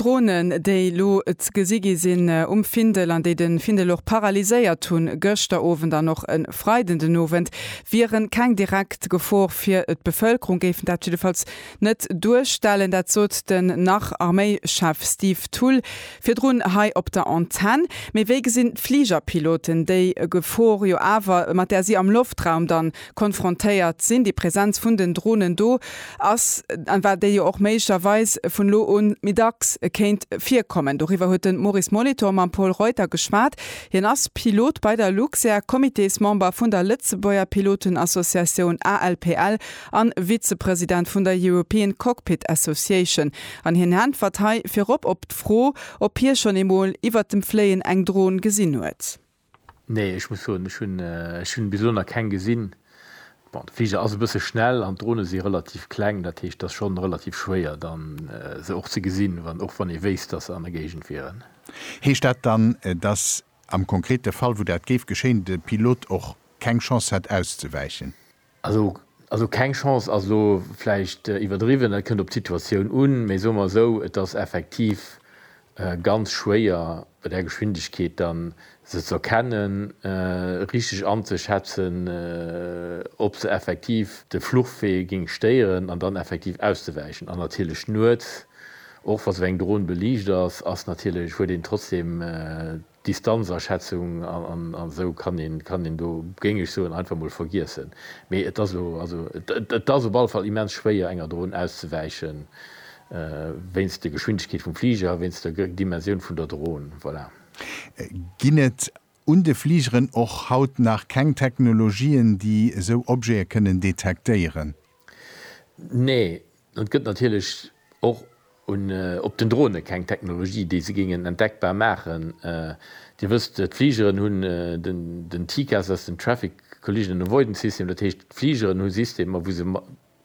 D'Dronen, déi elo ze gesi gi sinn um Findel an déi de Findel och paralyséiert hunn, gëschter Owend an och e Freiden den Owend, wiere keng direkt Gefor fir d'Bevëlkerung, géifen dat jiddefalls net duerstellen. Dat sot den Nach-Arméichef Steve Thull virdrun hei op der Antenn. Mee wéi gesinn d'Fligerpiloten déi Gefor jo awer, mat där si am Loftraum dann konfrontéiert sinn, déi Präsenz vun den Dronen do ass an well déi jo och méiglecherweis vun elo un méi dacks kéint virkommen. Doriwwer huet de Maurice Molitor mam Pol Reuter geschwat. Hien ass Pilot bei der Luxair, Comitésmember vun der Lëtzebuerger Pilotenassociatioun ALPL an Vizepresident vun der European Cockpit Association. An hien äntwert hei virop op d'Fro, ob hie schonn eemol iwwert dem Fléien eng Dron gesinn huet. Nee, ech muss soen, ech hunn ech hunn bis elo nach keng gesinn. Bon, de Fliger ass e bësse schnell an d'Drone si relativ kleng, dat heescht, et ass schonn relativ schwéier dann se och ze gesinn, wann och wann ee wéisst, datt se an der Géigend wieren. Heescht dat dann, datt am konkrete Fall, wou dat géif geschéien, de Pilot och keng Chance hätt auszewäichen? Also, also keng Chance ass elo vläicht iwwerdriwwen, dat kënnt op d'Situatioun un, mee soe mer esou, et ass effektiv ganz schwéier bei där Geschwindegkeet da se ze erkennen, richteg anzeschätzen, ob se effektiv de Fluchwee géing stéieren an dann effektiv auszewäichen. An natierlech nuets, och wa se eng Dron beliicht ass, ass natierlech, huet een trotzdeem Distanzaschätzung an esou kann een do, géing ech soen, einfach mol vergiessen. Mee et ass elo, et ass op alle Fall immens schwéier enger Dron auszewäichen, wéinst der Geschwindegkeet vum Fliger a wéinst der Dimensioun vun der Dron. Voilà. Ginn et un de Fligeren och haut nach keng Technologien, déi esou Objete kënnen detektéieren? Nee, Et gëtt natierlech och op den Drone keng Technologie, déi se géingen entdeckbar maachen. Dir wësst, d'Fligeren hunn den TCAS, dat ass den Traffic Collision Avoidance System, dat heescht, d'Fligeren hu Systemer, wou se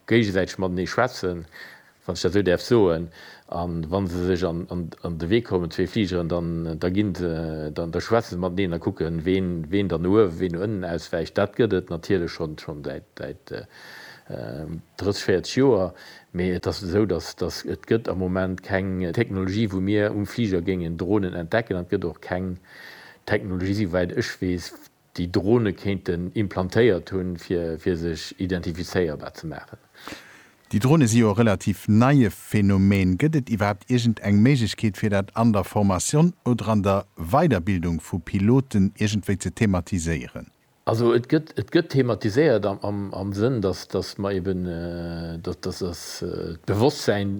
géigesäiteg matenee schwätzen, wann ech dat esou däerf soen, a wa se sech an de Wee kommen, zwee Fligeren, da schwätze se mateneen a kucken, ween dann no uewen, ween no ënnen auswäicht. Dat gëtt et natierlech schonn säit Drëtzeg, véierzeg Joer, mee et ass esou, datt et gëtt am Moment keng Technologie, wou mir um Fliger géingen Dronen entdecken, an et gëtt och keng Technologie, souwäit ech weess, déi Drone kéinten implantéiert hunn, fir sech identifizéierbar ze maachen. Déi Drone si jo e relativ neie Phänomen. Gëtt et iwwerhaapt iergend eng Méiglechkeet, fir dat an der Formation oder an der Weiderbildung vu Piloten iergendwéi ze thematiséieren? Also et gëtt, et gëtt thematiséiert am Sënn, dass, dass mer eeben, dass, dass das d'Bewosstsäin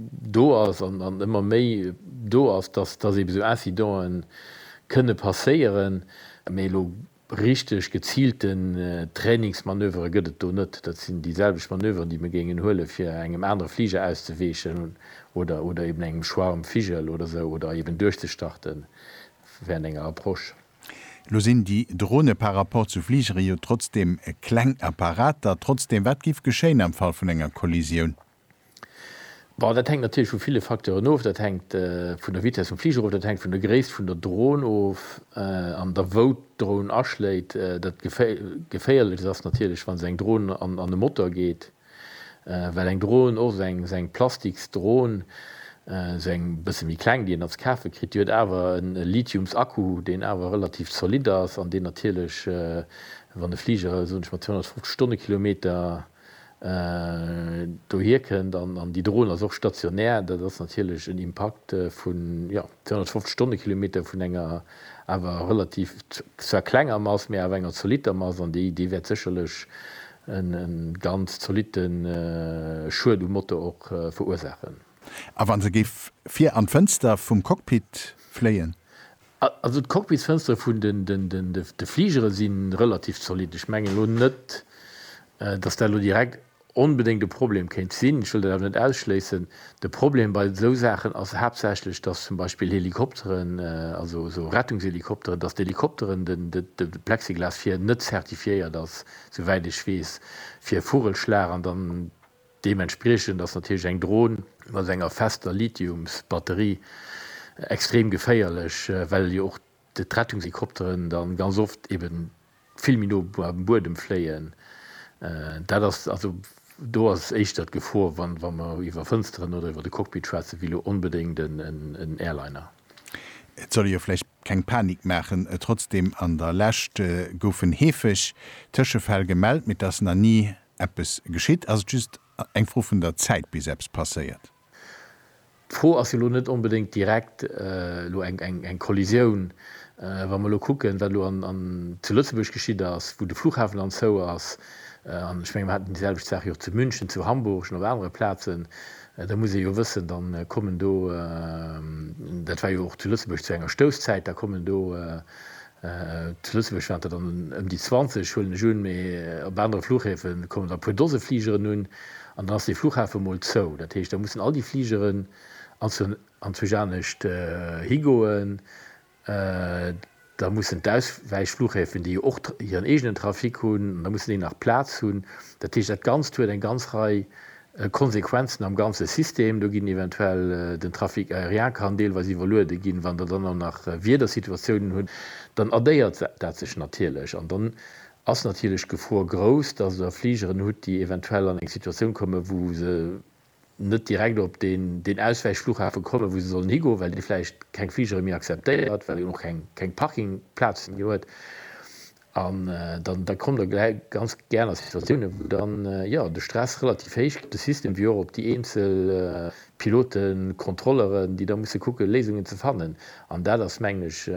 do ass an ëmmer méi do ass, dass, dass eebe sou Incidente kënne passéieren. Mee elo richteg geziilten Trainingsmanövere gëtt et do net. Dat sinn déi selwecht Manöveren, déi mir géingen huele fir engem anere Fliger auszeweechen oder, oder eeben engem Schwarm Vigel oder sou oder eeben duerchzestarten während enger Approche. Elo sinn déi Drone par rapport zu Fligere jo trotzdeem kleng Apparater. Trotzdeem, wat géif geschéien am Fall vun enger Kollisioun? Bon, dat hänkt natierlech vu ville Facteuren of. Dat hänkt vun der Vitess vum Fliger of, dat hänkt vun der Gréisst vun der Dron of an da wou d'Dron aschléit. Dat Geféierlechst ass natierlech, wa se eng Dron an e Motor geet. well eng Dron och seng seng eng plastiks Dron sou eng bësse méi kleng déi een als kafe kritt, déi huet awer en Lithiums Akku deen awer relativ zolidd ass an deen natierlech wann e Fliger soen ech mal 250 Stonnekilometer dohier kënnt an déi Dron ass och stationär dat ass natierlech en Impakt vun jo 250 Stonnekilometer vun enger awer relativ zwar klenger Mass mee awer enger zolitter Mass an déi déi wäert sécherlech E ganz zolitte Schued um Motor och verursaachen. A wa se géif vir an d'Fënster vum Cockpit fléien? Also d'Cockpitsfënstere vun de Fligere si relativ zolitt. Ech mengen elo net, datt dat elo direkt onbedéngt e Problem kéint sinn. Ech wëll dat awer net ausschléissen. De Problem bei esou Saachen ass haaptsächlech, datt zum Beispill Helikopteren, also esou Rettungshelikopteren, datt d'Helikopteren, de Plexiglas vir net zertifiéiert ass souwäit ech weess, fir Vogelschlag an dann deementspriechend ass natierlech eng Dron mat enger fester Lithiumsbatterie extrem geféierlech, well jo och d'Rettungshelikopteren da ganz oft eben vill méi no beim Buedem fléien. Dat ass also, do ass éischter d'Gefor, wa mer iwwer Fënsteren oder iwwer de Cockpit schwätzen, wéi elo onbedéngt en Airliner. Et soll ee jo vläicht keng Panik maachen, trotzdem, an der Lescht goufen heefeg Tëschefäll gemellt, mee et ass nach ni eppes geschitt. Ass et just eng Fro vun der Zäit, bis eppes passéiert? D'Fro ass jo elo net onbedéngt direkt elo eng Kollisioun. Wa mer elo kucken, wat elo zu Lëtzebuerg geschitt ass, wou de Flughafen anzou ass, an ech menge mer haten déi selwecht Saach jo och zu München, zu Hamburg an op anere Plazen, Da muss ee jo wëssen, da kommen do, dat war jo och zu Lëtzebuerg zu enger Stousszäit, da kommen do, zu Lëtzebuerg waren der dann ëm déi 20, huelen ech un, mee op anere Fluchhäfe kommen der e puer Dose Fligeren un an dann ass dee Fluchhafe mol zou. Dat heescht, da mussen all déi Fligeren anzwousch anescht higoen. Da mussen d'Auswäichflughäfen, déi jo och hiren eegenen Trafic hunn, da mussen déi nach Plaz hunn. Dat heescht, dat Ganzt huet eng ganz Rei Konsequenzen am ganze System. Do ginn eventuell, den Trafic aérien kann deelweis iwwerluede ginn. Wann Der dann och nach Wiedersituatiounen hutt, dann addéiert dat sech natierlech. An dann ass natierlech d'Gefor grouss, dass Der Fligeren hutt, déi eventuell an eng Situatioun kommen, wou se net direkt op deen Auswäichflughafen kommen, wou se sollen higoen, well dee vläicht keng Fligere méi akzeptéiert, well en och keng Parkingplazen méi huet. An da kommt Der gläich ganz gär a Situatiounen, wou dann, jo, de Stress relativ héich gëtt, de System wéi och op déi eenzel Piloten, Contrôleuren, déi da musse kucken, Léisungen ze fannen. An dat ass, mengen ech,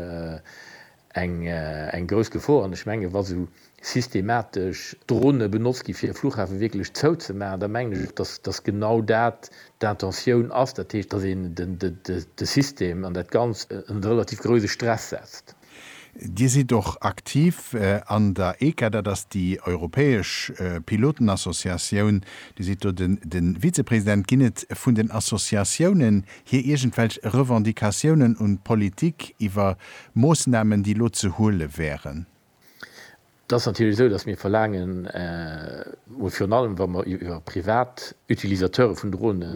Eng grouss Gefor, an ech mengen, wa sou systematesch Drone benotzt ginn, fir e Fluchhafe wierklech zouzemaachen, da mengen ech och, dass genau dat d'Intentioun ass, dat heescht, dass een de System an dat Ganzt ënnert e relativ grouse Stress setzt. Dir sidd och aktiv an der ECA, dat ass déi europäesch Pilotenassociatioun. Dir sidd do de Vizepresident. Ginn et vun den Associatiounen hir iergendwelch Revendicatiounen un d'Politik iwwer Moossnamen, déi elo ze huele wären? Et ass natierlech esou, datt mir verlaangen, mol virun allem wa mer iwwer privat Utilisateure vun Drone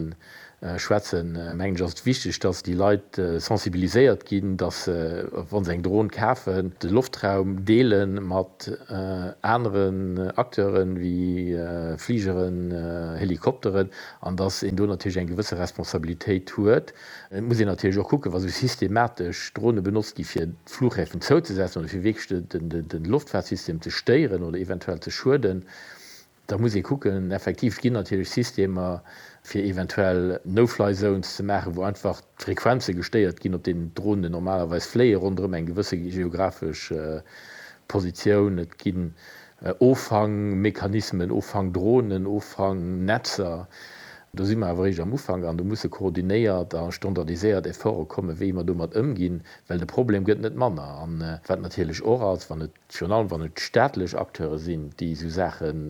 schwätzen, mengen ech ass et wichteg, datt déi Leit sensibiliséiert ginn, datt se, wa se eng Dron kafen, de Loftraum deele mat aneren Acteuren, wéi Fligeren, Helikopteren, an datt een do natierlech eng gewësse Responsabilitéit huet. Et muss een natierlech och kucken, wa sou systematesch Drone benotzt gi fir d'Flughäfen zouzesetzen oder fir wierklech de Loftfaartsystem ze stéieren oder eventuell ze schueden, da muss ee kucken. Effektiv, et ginn natierlech Systemer fir eventuell No-Fly Zones ze maachen, wou einfach d'Frequenze gestéiert ginn, op deenen d'Dronen normalerweis fléien, ronderëm eng gewësse geographesch Positioun. Et ginn Offankmechanismen, Offankdronen, Offanknetzer, do si mer awer eréischt am Ufank an do musse koordinéiert a standardiséiert Efforte kommen, wéi mer domat ëmginn, well de Problem gëtt net manner. A wat natierlech och ass, wann et, virun allem wann et staatlech Acteure sinn, déi esou Saachen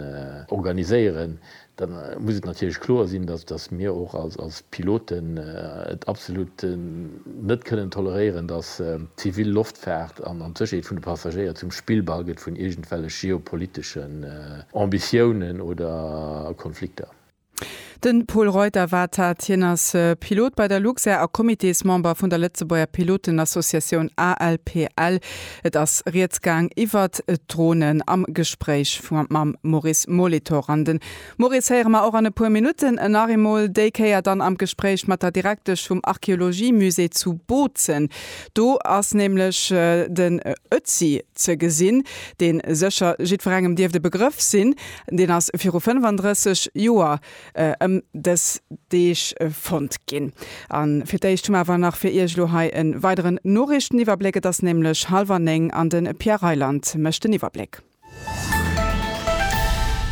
organiséieren, Da muss et natierlech kloer sinn, dass mir och als Piloten et absolut net kënnen toleréieren, dass d'zivil Loftfaart an d'Sécherheet vun de Passagéier zum Spillball gëtt vun iergendwellech geopoliteschen Ambitiounen oder Konflikter. De Pol Reuter war dat. Hien ass Pilot bei der Luxair a Comitésmember vun der Lëtzebuerger Pilotenassociatioun ALPL. Et ass rieds gaang iwwert d'Dronen am Gespréich mam Maurice Molitor. An den Maurice héiere mer och an e puer Minutten nach eemol, déi Kéier dann am Gespréich mat der Direktesch vum Archeologiemusée zu Bozen. Do ass nämlech den Ötzi ze gesinn, dee sécher jiddwerengem dierft e Begrëff sinn. Deen ass viru 35 Joer ëm dës Deeg fonnt ginn. A fir d'éischt hu mer awer nach fir Iech elo hei e weideren Noriichteniwwerbléck. Et ass nämlech hallwer néng an de Pierre Reyland mécht den Iwwerbléck.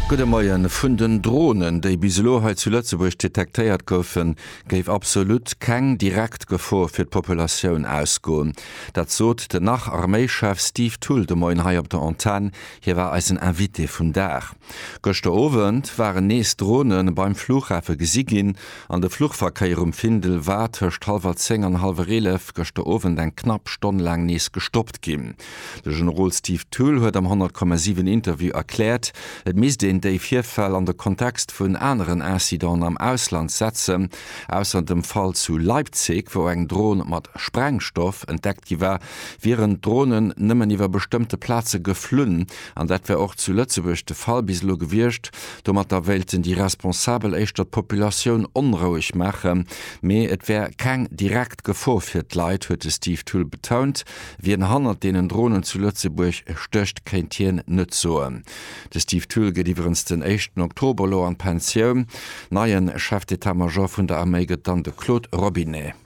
Gudde Moien. Vun den Dronen, déi bis elo hei zu Lëtzebuerg detektéiert goufen, géif absolut keng direkt Gefor fir d'Populatioun ausgoen. Dat sot den Nach-Arméischef Steve Thull de Moien hei op der Antenn Hie war eisen Invité vum Dag. Gëschter Owend waren nees Drone beim Flughafe gesi ginn an de Fluchverkéier um Findel war tëscht hallwer zéng an hallwer eelef gëschter Owend eng knapp Stonn laang nees gestoppt ginn. De Generol Steve Thull huet am 100,7 Interview erkläert, et misst een déi Virfäll an de Kontext vun aneren Incidenten am Ausland setzen. Ausser dem Fall zu Leipzig, wou eng Drone mat Sprengstoff entdeckt gi war, wieren d'Dronen nëmmen iwwer bestëmmte Plaze geflunn, an dat wär och zu Lëtzebuerg de Fall bis elo gewiescht. Domatter wéilten déi Responsabel éischter d'Populatioun onroueg maachen, mee et wär keng direkt Gefor fir d'Leit, huet de Steve Thull betount. Wien hannert deenen Dronen zu Lëtzebuerg stécht, kéint hien net soen. De Steve Thull geet iwwerens den éischten Oktober elo an d'Pensioun. Neien Chef d'Etat-Major vun der Arméi gëtt dann de Claude Robinet.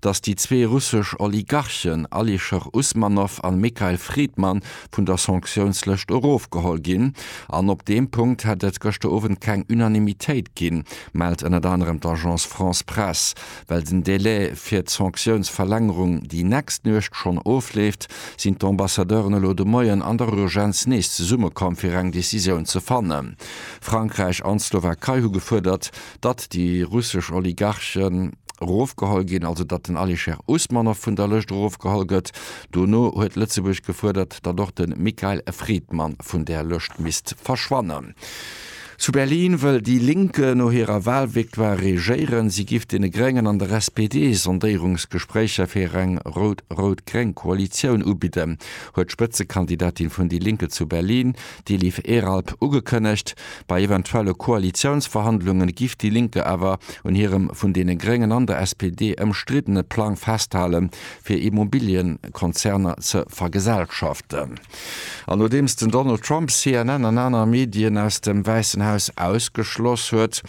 datt déi zwee russesch Oligarchen Alisher Usmanov an Mikhail Fridman vun der Sanktiounslëscht erofgeholl ginn. An op deem Punkt hätt et gëschter Owend keng Unanimitéit ginn, mellt ënnert anerem d'Agence France-Presse. Well den Delai fir d'Sanktiounsverlängerung déi nächst Nuecht schonn ofleeft, sinn d'Ambassadeuren elo de Moien an der Urgenz nees zesummekomm fir eng Decisioun ze fannen. Frankräich an d'Slowakei hu gefuerdert, datt déi russesch Oligarche erofgeholl ginn, also datt den Alisher Usmanov vun der Lëscht erofgeholl gëtt. Dono huet Lëtzebuerg gefuerdert, datt och de Mikhail Fridman vun där Lëscht misst verschwannen. Zu Berlin wëll déi Link no hirer Walvictoire regéieren. Si giff deene Gréngen an der SPD Sondéierungsgespréicher fir eng rout-rout-gréng Koalitioun ubidden, huet d'Spëtzekandidatin vun déi Linke zu Berlin, déi Liv Eralp ugekënnegt. Bei eventuelle Koalitiounsverhandlunge giff déi Linke awer un hirem vun deene Gréngen an der SPD ëmstriddene Plang festhale fir Immobiliëkonzerner ze vergesellschaften. An nodeems den Donald Trump CNN an aner Medien aus dem Wäissen Haus ausgeschloss huet,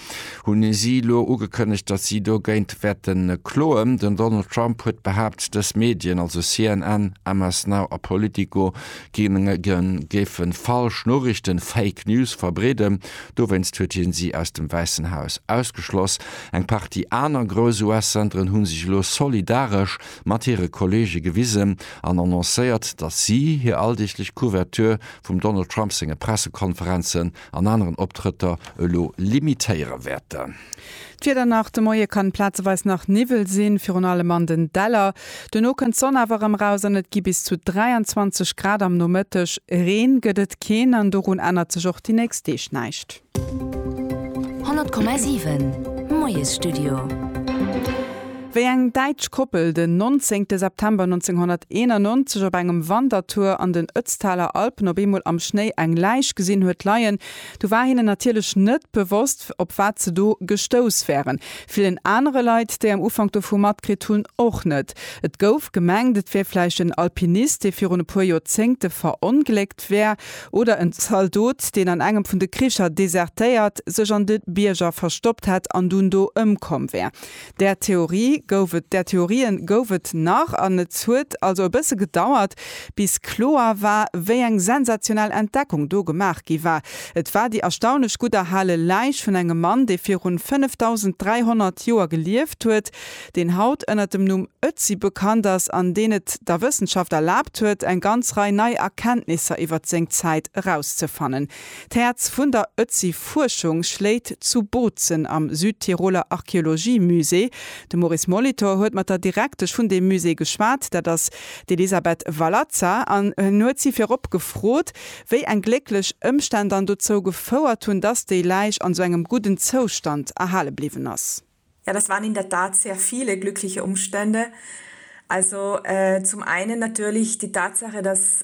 hunn si elo ugekënnegt, datt si dogéint wäerte kloen. Den Donald Trump huet behaapt, dës Medien, also CNN, MS Now a Politico, D'Gemengen géifen falsch Noriichten, Fake News, verbreeden. Dowéinst huet hien si aus dem Wäissen Haus ausgeschloss. Eng Partie aner grouss US-Zenteren hunn sech elo solidaresch mat hire Kolleege gewisen an annoncéiert, datt si hir alldeeglech Couverture vum Donald Trump senge Pressekonferenzen an aneren Optrëtter elo limitéiere wäerten. D'Wieder nach, De Moie kann plazeweis nach Niwwel sinn, virun allem an den Däller. Duerno kënnt d'Sonn awer erëm raus an et gi bis zu 23 Grad am Nomëtteg. Reen gëtt et keen an dorun ännert sech och déi nächst Deeg näischt. 100,7 Moiesstudio. Wéi eng däitsch Koppel den 19 September 1991 op engem Wandertour an den Ötztaler Alpen op eemol am Schnéi eng Läich gesinn huet leien, Do war hinnen natierlech net bewosst, op wat se do gestouss wären. Villen anere Leit, déi am Ufank dovu matkritt hunn, och net. Et gouf gemengt, et wär vläicht en Alpinist, dee virun e puer Joerzéngte verongléckt wär, oder en Zaldot, deen an engem vun de Kricher desertéiert, sech an de Bierger verstoppt hätt an dunn do ëmkomm wär. Där Theorie gouf et, där Theorien gouf et nach, an et huet also e bësse gedauert, bis kloer war, wéi eng sensationell Entdeckung do gemaach gi war. Et war déi erstaunlech gutt erhale Läich vun engem Mann, dee virun 5.300 Joer gelieft huet, deen haut ënner dem Numm Ötzi bekannt ass an deen et der Wëssenschaft erlaabt huet, eng ganz Rei nei Erkenntnisser iwwert seng Zäit erauszefannen. D'Häerz vun der Ötzi-Fuerschung schléit zu Bozen am Südtiroler Archeologie-Musée. De Maurice Molitor huet mat der Direktesch vun deem Musée geschwat, dat ass d'Elisabeth Valazza, an en huet si virop gefrot, wéi eng glécklech Ëmstänn dann dozou gefouert hunn, datt déi Läich an esou engem gudden Zoustand erhale bliwwen ass. Ja, das waren in der Tat sehr viele glückliche Umstände. Also zum einen natürlich die Tatsache, dass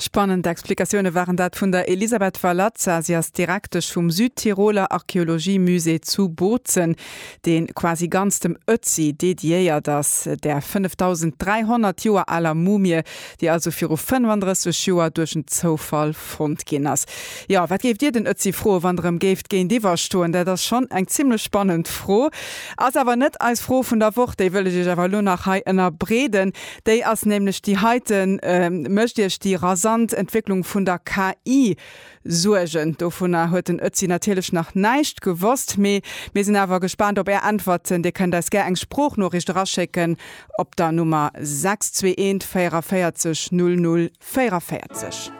Spannend Explikatioune waren dat vun der Elisabeth Valazza. Si ass Direktesch vum Südtiroler Archeologie-Musée zu Bozen, dee quasi ganz dem Ötzi dediéiert ass, där 5.300 Joer aler Mumie, déi also viru 35 Joer duerch en Zoufall fonnt ginn ass. Jo, wat géift Dir den Ötzi froen, wann Der em géift géintiwwer stoen? Dat ass schonn eng zimlech spannend Fro. Ass awer net eis Fro vun der Woch. Déi wëll ech Iech awer elo nach hei ënnerbreeden. Déi ass nämlech déi heiten. Mécht Iech déi rasant Entwécklung vun der KI Suergen? Dovunner huet den Ötzi natierlech nach näischt gewosst, mee mir sinn awer gespaant op Är Äntwerten. Dir kënnt eis gär eng Sproochnoriicht eraschécken op der Nummer 621 44 00 44.